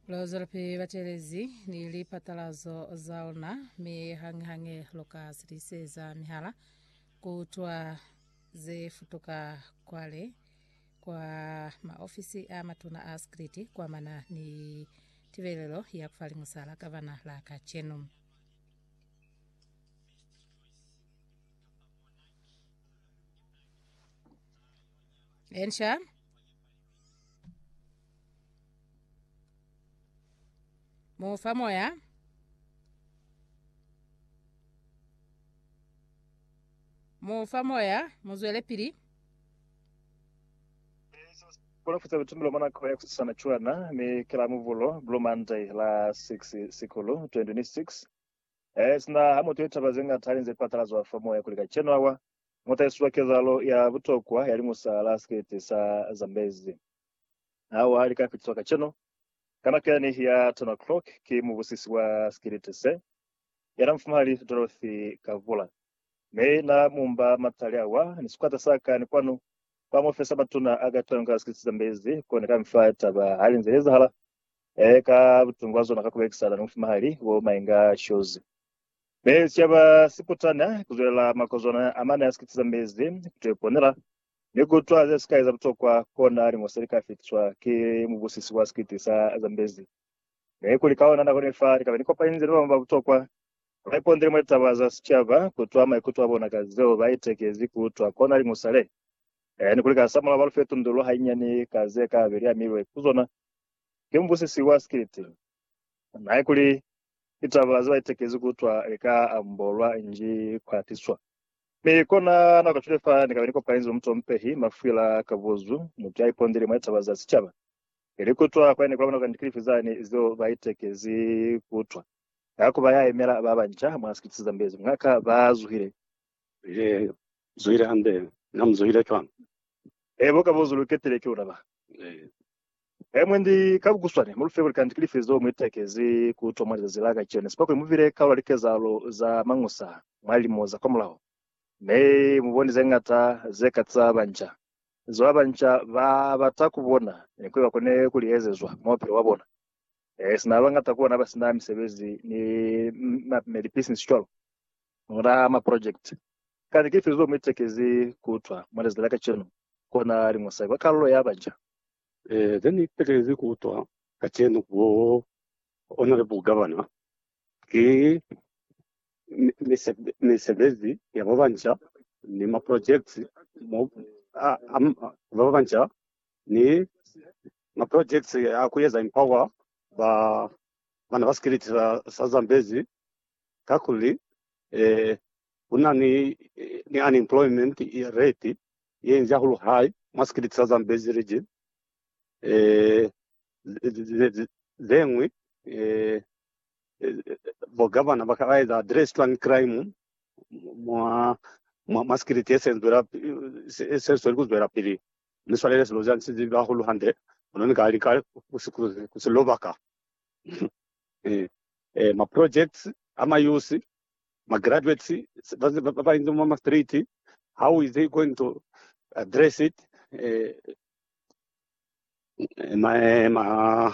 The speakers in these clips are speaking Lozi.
Luzwelapili mi batelezi ni lipatalazo za luna, mi hañihañi luka sitiseza mihala kutwa ze futuka kwale kwa maofisi a matuna a sikriti kuamana ni tibelelo ya kufa liñusa la gavana la kacenu. Ensha. Mu fa moya. Mu fa moya, mu zwele pili. Kulafutsa bitumbulo mwa nako ya kusisana cwana ni ki la Mubulo, Blue Monday, la 6 Sikulu 2006. Sina ha mutu ye taba ze ñata alinze patalazwa fa moya kuli kacenu awa Mo tahiswa kezahalo ya butokwa ya limusa la sikete sa Zambezi hawa li ka fitiswa kacenu ka nako ya nihi ya 10 o'clock ki mubusisi wa sikiliti se, yana Mufumahali Dorothy Kavula, mi na mumba matali awa ni sikwata sa ka ni kwanu kwa muofisi ya matuna a ka tonga sikiliti sa Zambezi, ko ni ka mi fa taba hali nze li ezahala, e, ka butungu bwa zona ka ku belekisana ni Mufumahali Womainga Shozi. Ne si yaba sikutana kuzwelela makozwana amane a sikiti za mezi, kuto iponela, ni kutwa ze sikai za butokwa, kona limo se lika fitiswa ki mubusisi wa sikiti sa za mezi. Ne kuli ka ona nako ne fa lika beni kopani nze ni babañwi ba butokwa, ba ipondele mwa litaba za sicaba, kutwa maikuto abona ka zeo ba itekezi kutwa, kona limo sale, e, ni kuli ka samulaho ba lu fe tundululo hainyani ka ze ka be li amilwe kuzona ki mubusisi wa sikiti. Nae kuli, Ki taba ze ba itekezi ku utwa lika ambolwa nji kwa tiswa. Mi kona nako kacwile fa ni kabe ni kopanize mutompehi mafwila ka buzu, mutu ya ipondile mwa litaba za sicaba, ili ku utwa kwa ne kula bona kuli ndikilifi zani zeo ba itekezi ku utwa. Ka kuba ya yemela ba banca mwa sikiti se zambezi, mwa ka ba zuhile He zuhile hande, na mu zuhile cwang? He bo ka bo zu lu ketile ki uraba. He. He mwendi, ka ku kuswane, mu lu fe kuli kanti ki lifi zo mu itekezi ku utwa mwa lizazi la kacenu, sipa kuli mu bile kaula likezahalo za mañusa mwa lilimo za kwamulaho, mi mu boni ze ñata ze ka za banca zo ba banca ba bata ku bona ni kuli ba kone ku li ezezwa mwa bupilo bwa bona. Ee, sina ba bañata ku bona ba si na misebezi ni, ni lipisinisi cwalo, muna maprojekiti. Kani ki lifi zeo mu itekezi ku utwa mwa lizazi la kacenu, kona li mosai, kwa kalulo ya baca? Ee, ze ni itekezi ku utwa kacenu, ku ona le bugavana, ki misebezi ya ba banca ni maprojekiti mo, a, a ba banca ni Ma projects a ku eza empower ba bana ba sikiliti sa, sa Zambezi kakuli eh, ku na ni, ni unemployment rate ye nzi hahulu high mwa sikiliti sa Zambezi region. Eh, zengwi eh, bo governor ba ka eza address twang crime mwa mwa, mwa sikiliti esenzwela esenzwela kuzwela pili Ni swalele silo za nsi zibi hahulu hande, kono ni ka lika ku si kuzi, ku si lobaka. Ee, ma projects a mayusi, ma graduates ba, ba, ba, ba inzi mwa ma street, how is he going to address it? Eh, eh, ma, eh, ma,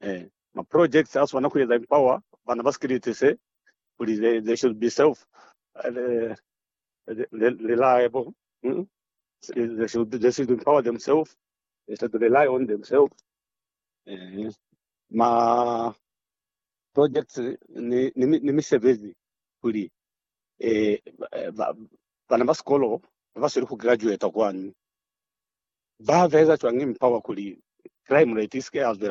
Eh, ma projects a swana ku eza empower bana ba sikiliti se kuli they, they should be self uh, reliable. Mm? They should they should empower themselves. They should rely on themselves. Eh, ma projects ni ni, ni misebezi kuli eh ba, bana ba sikolo ba sele ku graduate kwani ba veza chwang empower kuli crime rate iske ya